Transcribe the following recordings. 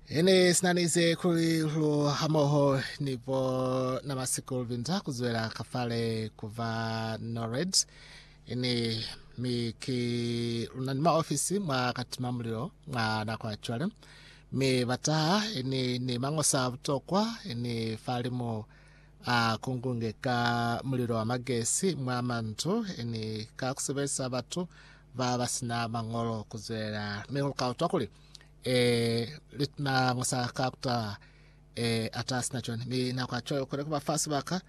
Ene sinanize kuli lu hamoho ni bo na masikulu binza kuzwela kafale kuba Norred ini mi ki luna ni maofisi mwa katima mulilo mwa nako ya cwale mi bataha ini ni mangosa a butokwa ini falimu a kungunge ka mulilo wa magesi mwa mandu ini ka kusebelisa batu ba ba si na mañolo ku zwelela, mi lu ka utwa kuli, Eh, lit na nga sa ka kuta, eh, ata si na cwani. Mi na kwa cwalo kone ku ba fa sibaka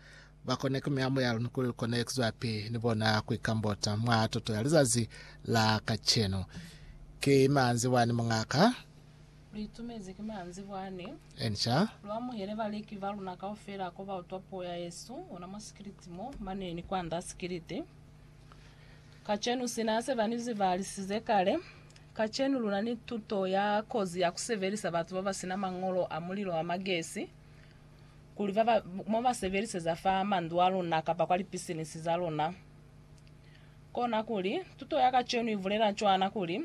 ba kone ku mea moya luni kuli lu kone ku zwapi ni bona ku ikambota mwa tuto ya lizazi la kacenu. Ki manzi wani mungaka. Lu itumezi ki manzi wani. Enca. Lu amuhele baleki ba luna kaufela ko ba utwa puo ya Yesu, ona mwa sikiliti mo, mane ni kwanda sikiliti. Kacenu, sina se ba ni zibalisize kale, kacenu luna ni tuto ya kozi ya ku sebelisa batu ba ba sina mañolo a mulilo wa magesi kuli ba ba mo ba sebeliseza fa mandu a luna kapa kwa lipisinisi za luna. Kona kuli, tuto ya kacenu i bulela cwana kuli,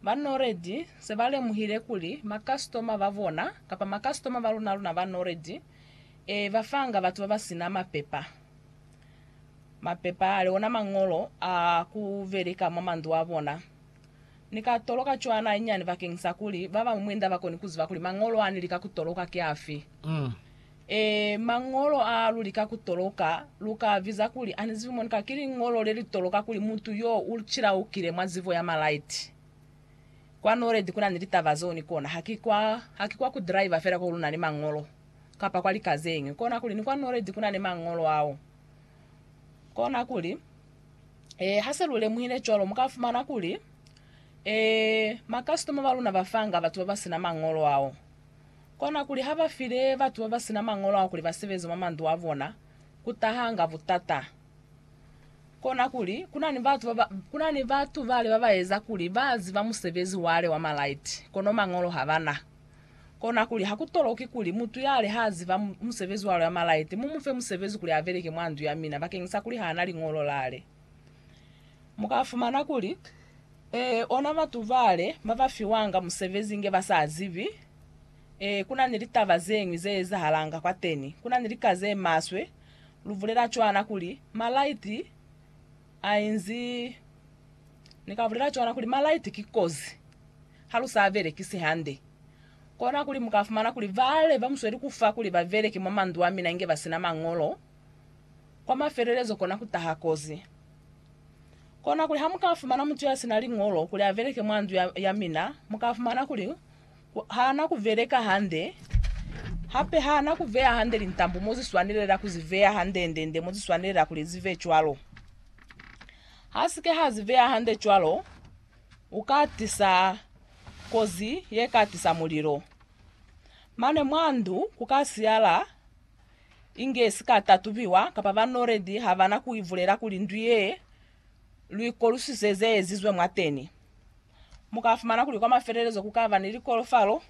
Ba Noredi se ba lemuhile kuli makasitoma ba bona kapa makasitoma ba luna-luna ba Noredi, e, ba fanga batu ba ba sina mapepa. Mapepa ali ona mañolo a ku beleka mwa mandu a bona. Ni ka toloka cwana inyani bakeng sa kuli ba bañwi mwinda ba koni ku ziba kuli mañolo a ni lika ku toloka ki afi. Ee, mañolo a lu lika ku toloka, lu ka a biza kuli a ni zibi mo ni ka. Ki liñolo le li toloka kuli mutu yo u cilaukile mwa zibo ya malaiti. Kwa Norred ku na ni litaba zeo ni kona. Ha ki kwa, ha ki kwa ku driver fela ko lu na ni mañolo. kapa kwa lika zeñwi. Konakuli ni kwa noledi kunani mañolo ao. Konakuli, ee, hase lu lemuhile cwalo, mu ka fumana kuli, ee, makasitoma ba luna ba fanga batu baba sina mañolo ao. Konakuli ha ba file batu baba sina mañolo ao kuli ba sebeze mwa mandu a bona, ku tahanga butata. Konakuli, kunani batu baba, kunani batu bale baba eza kuli ba ziba musebezi wale wa malaiti, kono mañolo habana. Konakuli, ha ku toloki kuli mutu yale ha ziba musebezi wa loya malaite, mu mu fe musebezi kuli a beleke mwa ndu ya mina, bakeñisa kuli ha na liñolo lale. Mu ka fumana kuli, Ee, ona batu bale ba ba fiwanga musebezi inge ba sa zibi. Ee, ku na ni litaba ze ñwi ze ezahalanga kwateni. Ku na ni lika ze maswe. Lu bulela cwana kuli, Malaite a inzi Ni ka bulela cwana kuli malaiti ki kozi ha lu sa belekisi hande. Kona kuli mu ka fumana kuli bale ba mu sweli ku fa kuli ba beleke mwa mandu a mina inge ba si na mañolo. Kwa mafelelezo kona ku taha kozi. Kona kuli ha mu ka fumana mutu ya si na liñolo kuli a beleke mwa ndu ya, ya mina, mu ka fumana kuli ha na ku beleka hande, hape ha na ku veya hande lintambo mo zi swanelela ku zi veya hande-nde-nde mo zi swanelela kuli zi ve cwalo. Ha si ke ha zi beya hande cwalo, u ka tisa kozi ye ka tisa mulilo. Mane mwa ndu ku ka siyala inge si ka tatubiwa kapa ba noledi ha ba na ku i bulela kuli ndu ye lu i kolusise ze ezizwe mwateni. Mu ka fumana kuli kwa mafelelezo ku ka ba ni likolofalo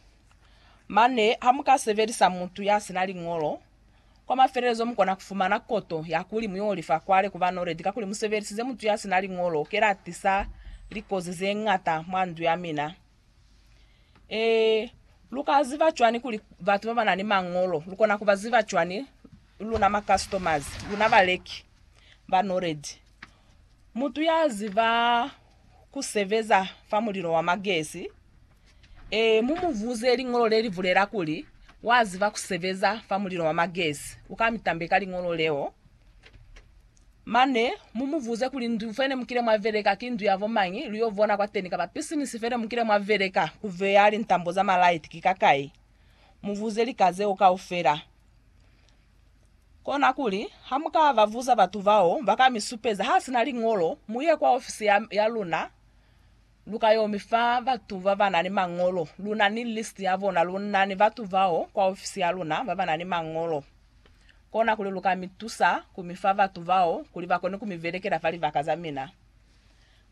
mane ha mu ka sebelisa mutu ya si na liñolo Kwa mafelelezo mukona kufumana koto ya kuli muyolifa kwale kuba noledi kakuli musebelisize mutu yasina liñolo kelatisa likozi zeñata mwa ndu yamina. Ee, luka ziba cwani kuli batu babana ni mañolo? Lukona kuba ziba cwani luna ma customers, luna baleki ba noledi? Mutu yaziba ku sebeza fa mulilo wa magesi? Ee, mu mu buze liñolo le li bulela kuli, Wa ziba ku sebeza fa mulilo wa magesi. U ka mi tambe ka liñolo leo. Mane, mu mu buze kuli, Ndu fe ne mu kile mwa beleka ki ndu ya bo mañi? Lu yo bona kwateni. Kaba pisinisi fe ne mu kile mwa beleka ku beya lintambo za malaiti ki ka kai? Mu buze lika zeo kaufela. Konakuli, hamuka babuza batu bao baka misupeza hasina liñolo, muye kwa ofisi ya, ya luna, luka yo mifa batu babana ni mañolo. Luna ni list ya bona, lunani batu bao kwa ofisi ya luna babana ni mañolo. Konakuli luka mitusa kumifa batu bao kuli bakone kumibelekela fa libaka za mina.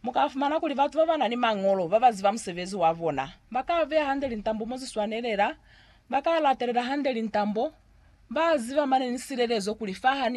Mu ka fumana kuli batu ba ba na ni mañolo ba ba ziba musebezi wa bona ba ka beya hande lintambo mo zi swanelela, ba ka latelela hande lintambo, ba ziba mane ni silelezo kuli fa ha ni